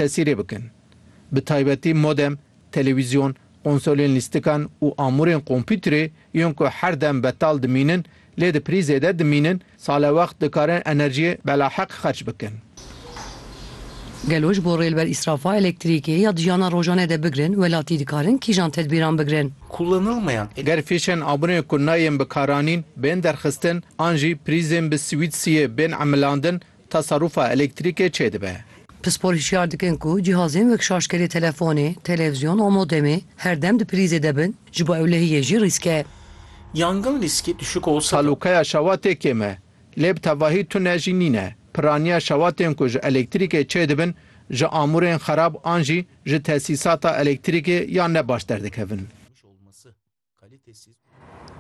Tesîrê bikin. Bi taybetî modem, telewîzyon, konsolên lîstikan û amûrên kompûterê yên ku her dem betal dimînin lê di prîzê de dimînin salewext dikarin enerjiyê belaheq xerç bikin. Gelo ji bo rêlber îsrafa elektrîkê ya di jiyana rojane de bigirin welatî dikarin kîjan tedbîran bigirin? Kullanılmayan elektrik. Ger fîşên abûnê ku nayên bikaranîn bên derxistin an jî prîzên bi swîtsiyê bên emilandin Teserrûfa elektrîkê çê dibe. Pispor hişyar dikin ku cîhazên wek şarjkerê telefonê, televizyon û modemê her dem di prîzê de bin, ji bo ewlehiyê jî rîsk e. Yangin rîskê düşük olsa da. Talûkaya şewatê kêm e, lê bi tevahî tune jî nîne. Piraniya şewatên ku ji elektrîkê çê dibin, ji amûrên xerab an jî ji tesîsata elektrîkê ya ne baş derdikevin.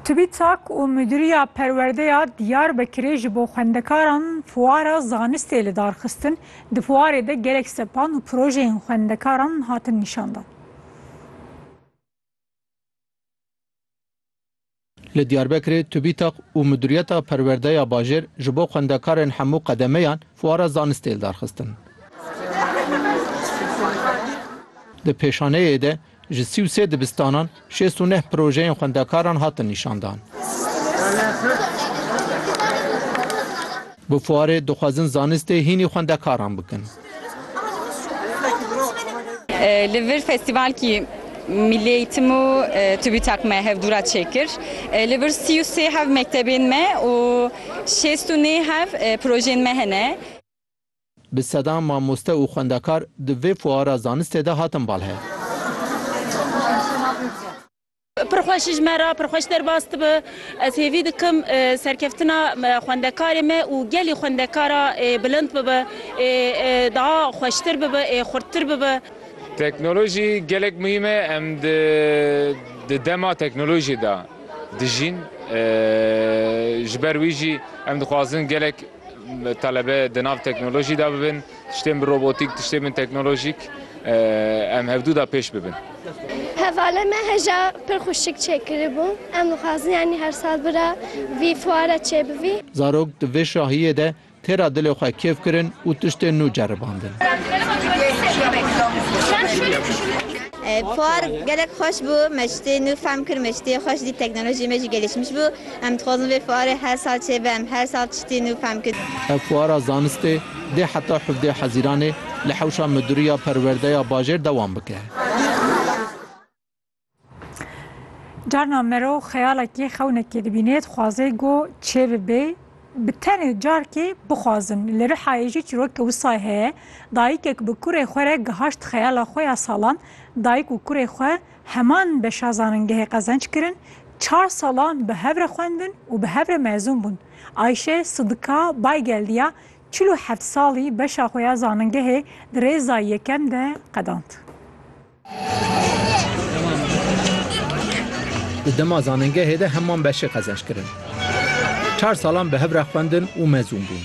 TÜBİTAK û Mudîriya Perwerdeya Diyarbekirê ji bo xwendekaran fuara zanistê li dar xistin, di fuarê de gelek sepan û projeyên xwendekaran hatin nîşandan. Li Diyarbekirê TÜBİTAK û Mudîriyeta Perwerdeya Bajêr ji bo xwendekarên hemû qedemeyan fuara zanistê li dar xistin. Di pêşaneyê de Ji sî û sê dibistanan şêst û neh projeyên xwendekaran hatin nîşandan. Bi fuarê dixwazin zanistê hînî xwendekaran bikin. Li vir festîvalkî Milli Eğitim û TÜBİTAK me hevdûra çêkir. Li vir sî û sê hev mektebên me û şêst û nê hev projeyên me hene. Bi sedan mamoste û xwendekar di vê fuara zanistê de hatin balhe. Pir xweş ji me re, pir xweş derbas dibe. Ez hêvî dikim serkeftina xwendekarê me û gelê xwendekara bilind bibe, daha xweştir bibe, xurttir bibe. Teknolojî gelek muhîm e. Em di dema teknolojî de dijîn. Ji ber wî jî em dixwazin gelek Talebe di nav teknolojî de bibin, tiştên bi robotîk, tiştên bi teknolojîk em hevdu de pêş bibin. Hevalê me hêja pir xweşik çêkiribû. Em dixwazin yanî her sal bira vî fuara çêbivî. Zarok di vê şahiyê de têra dilê xwe kêf kirin û tiştên nû ceribandin. Fuar gelek xweş bû, me tiştê nû fehm kir, me tiştê xweş dît, teknolojî me jî gelişmiş bû. Em dixwazin vê fuarê her sal çêbe, em her sal tiştî nû fehm kirin. Ev fuara zanistê dê heta hevdeh Hezîranê li hewşa Miduriya Perwerdeya Bajêr dewam bike. Carna merov xeyalekê xewnekê dibînê, dixwaze ku çê bibe, bi tenê carkê bixwazin. Li Rihayê jî çîrokeke wisayê heye. Dayikek bi kurê xwe re gihaşt xeyala xwe ya salan, dayik û kurê xwe, Heman beşa zanîngehê qezenc kirin, çar salan bi hev re xwendin û bi hev re mezûn bûn. Ayşe Sidika Baygeld ya çil û heft salî beşa xwe ya zanîngehê di rêza yekem de qedand. Di dema zanîngehê de heman beşê qezenc kirin. Çar salan bi hev re xwendin û mezûn bûn.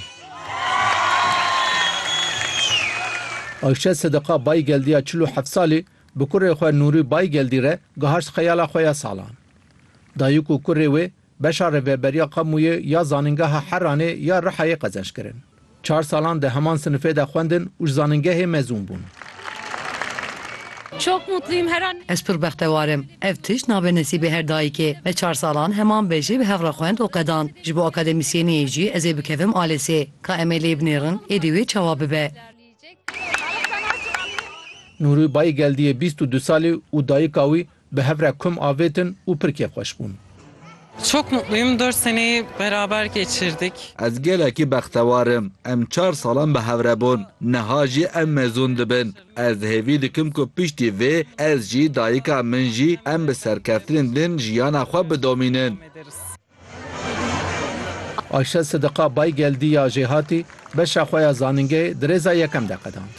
Ayşe Sidika Baygeld ya çil û heft salî Bi kurê xwe Nûrî Baygeldî re gihart xeyala xwe ya salan. Dayik û kurê wê beşa Rêveberiya Kamûyê ya Zanîngeha Heranê ya Rihayê qezenç kirin. Çar salan di heman sinifê de xwendin û ji zanîngehê mezûn bûn. Çok mutluyum her an. Ez pir bextewar im. Ev tişt nabe nesîbê her dayikê. Me çar salan heman bejê bi hev re xwend û qedan. Ji bo akademîsyeniyê jî ez ê bikevim alesê. Ka em ê lê binêrin, êdî wê çawa bibe? Nûrî bayî geldiyê bîst û du salî û dayika wî bi hev re kom avêtin û pir kêfxweş bûn. Çok mutluyum. Dört seneyi beraber geçirdik. Ez gelekî bextewar im. Em çar salan bi hev re bûn. Niha jî em mezûn dibin. Ez hêvî dikim ku piştî vê ez jî, dayika min jî em bi serkeftinên din jiyana xwe bidomînin. Ayşe Sidiqa Baygeldî ya Jêhatî beşa xwe ya zanîngehê di rêza yekem de qedand.